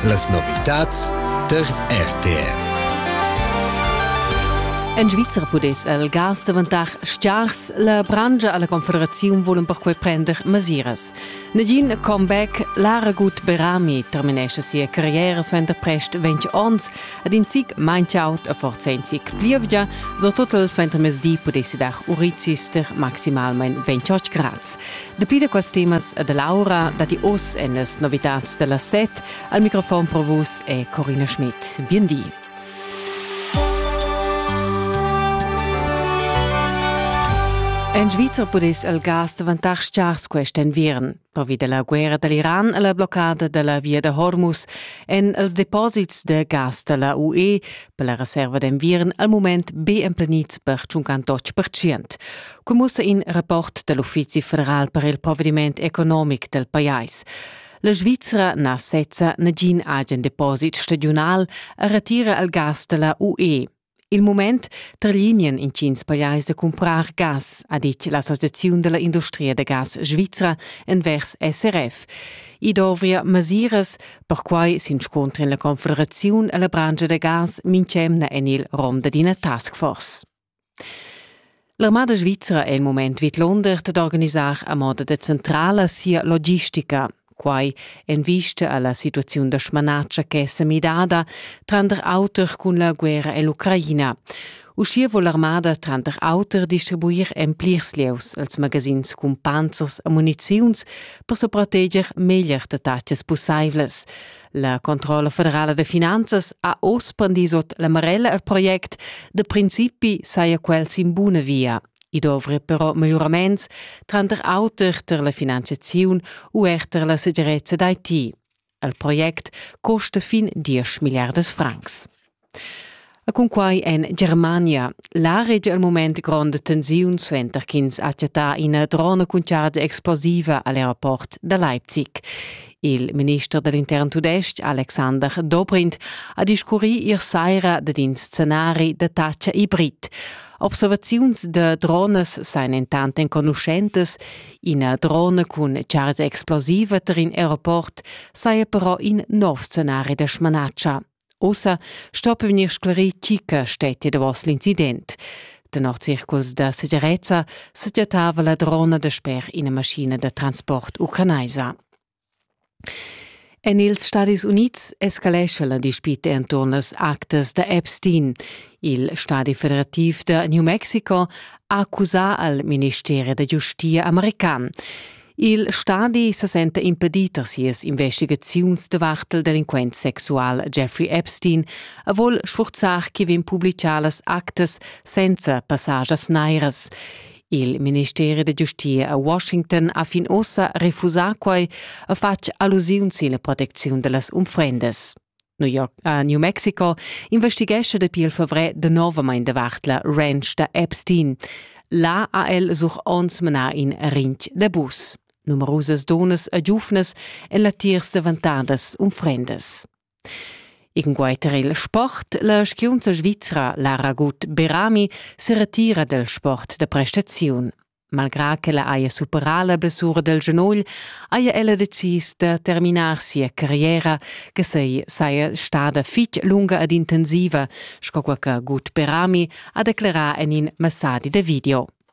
Las novitads tar RTR. En Svizra pudess el gas daventar stgars. La brangia alla Confederazione vulen perquei prender masiras. Negin comeback, Laragut Berami terminesce sia carriera suenter prest 20 onns ed in zic manchaut a forza in zic plievgia, so total suenter mesdi pudessi dar urizis ter maximalmein 28 grads. Dapi da quels temas e dall'aura datti oz en las novitads da las set. Al microfon pro vus è Corina Schmidt. Biendi. En Svizra pudess il gas daventar stgars quest enviern. Pervi della guerra dall'Iran e la bloccada della via da Hormuz èn els deposits de gas della UE per la reserva d'enviern al mument be emplenids per tschuncan totg percient. Cum mussa in rapport dal Uffizi federal per il provediment economic del pajais. La Svizra na sezza nagin agen deposit stagiunal a retira al gas da la UE. Il moment tralinien intgins pajais da cumprar gas, ha dit l'Associazione della Industria da Gas Svizra envers SRF. I dovria masiras Perquai s'inscuntra la Confederaziun e la branscha da gas mintg'emna en il rom da d'ina taskforce. L'armada svizra è il moment vidlonder d'organisar a moda decentrala sia logistica. Quai en vista a la situaziun da smanatscha ch'è semidada tranter auter cun la guerra en l'Ucraina. Uschia vul l'armada tranter auter distribuir en plirs lieus els magazins cun panzers e muniziuns per sa proteger meglier da tatgas pussaivlas. La Controlla federala da finanzas ha oz prendì sot la marella al project, da principi saja quel sin buna via. I dovri però miglioraments tranter auter tar la finanziaziun u er tar la segirezza d'IT. El project costa fin 10 milliardas francs. E cun quai en Germania la regia al moment gronda tensiun suenter ch'ins ha chattà ina drona cun chargia explosiva a l'aeroport da Leipzig. Il minister dell'intern tudestg Alexander Dobrindt ha discurrì ier saira dad in scenari da taccia hibrid. Observaziuns da dronas sain entant enconuschentas Ina drona cun chargia explosiva tar in aeroport saja però in nov scenari da smanatscha. Ussa sto vegnir sclerì tgi che stettia davos l'incident. Tenor circuls da segirezza sagiatava la drona dasper ina maschina da transport ucranaisa. En ils Stadis Unids escalescha la dispita enturn las actas da Epstein. Il Stadi federativ da New Mexico ha accusà al ministeri da giustia american. Il stadi sa senta impedì tar sias investigaziuns davart il delinquent sexual Jeffrey Epstein e vul sfurzar chi vegn publichà las actas senza passagias nairas. Il ministeri da giustia a Washington ha fin ossa refusà quai e fatg allusiun sin la protecziun da las unfrendas. New, York, uh, New Mexico investighescha dapi il favrer novamain davart la ranch da Epstein. Là ha el such ons manar in rinch da bus. Numerusas donas e giuvnas en latiers davantadas unfrendas. Inguiter il sport, la skiunza svizra Lara Gut Berami seretira del sport da prestaziun. Malgrà ch'ella haja superà la blessura del genogl, haja ella decis da terminar sia carriera, che sei saja stada fitg lunga ed intensiva, sco quella che Gut Berami ha declerà en in messadi de video.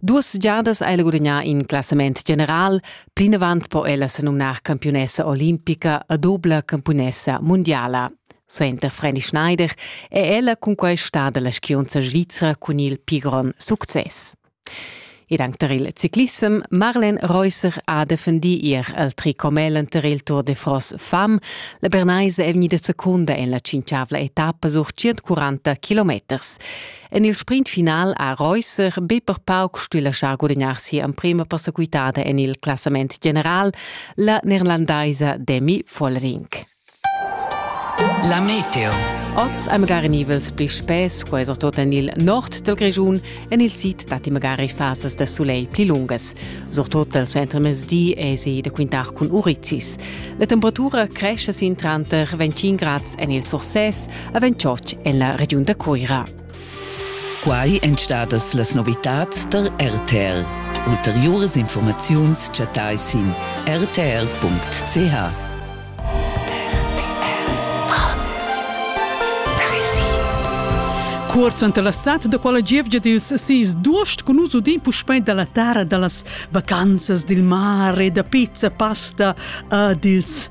Duas giadas ha ella gudagnà in classament general, plinavant po ella se numnar campiunessa olimpica e dobla campiunessa mundiala. Suenter Freddy Schneider è ella cunquai stada la skiunza svizra cun il pli grond success. Ed anche tar il ciclissem Marlen Reusser ha defendì ier al tricomel tar il Tour de France fam. La Bernaise è vegnida secunda en la cinciavla etappa sur 140 kilometers. En il sprint final ha Reusser be per pauc stuì laschar gudagnar sia emprima persequitada en il classament general, la neerlandaisa Demi Vollering. La meteo. Oz hai magari nivels pli spess, quai surtut en il nord dal Grischun. En il sid datti magari fasas da sulegl pli lungas. Surtut dal suentermezdi èsi da quintar cun urizis. La temperatura cresce sin tranter 25 grads en il Surses, a Ventschotg en la regiun da Cuira. Quai èn stadas las novitads tar RTR. Ulteriuras informaziuns chattai sin rtr.ch. Cuort suenter la stad da quella gievgia dils sis d'uost con nus udin puspei dalla tara dallas vacanzas dil mar e da pizza pasta uh, dils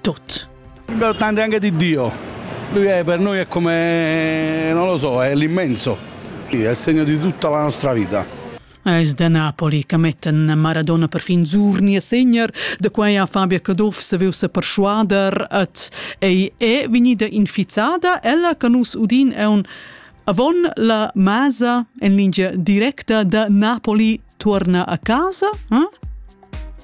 Tut. Il dipende anche di Dio. Lui è per noi è come, non lo so, è l'immenso. È il segno di tutta la nostra vita. Es da Napoli che mettan Maradona per fin Zurni e segner, da quai ha Fabia Caduff se veu se perschuader et ei è vegnida infizzada ella che nus udin è un avon la masa en linea directa da Napoli torna a casa, eh?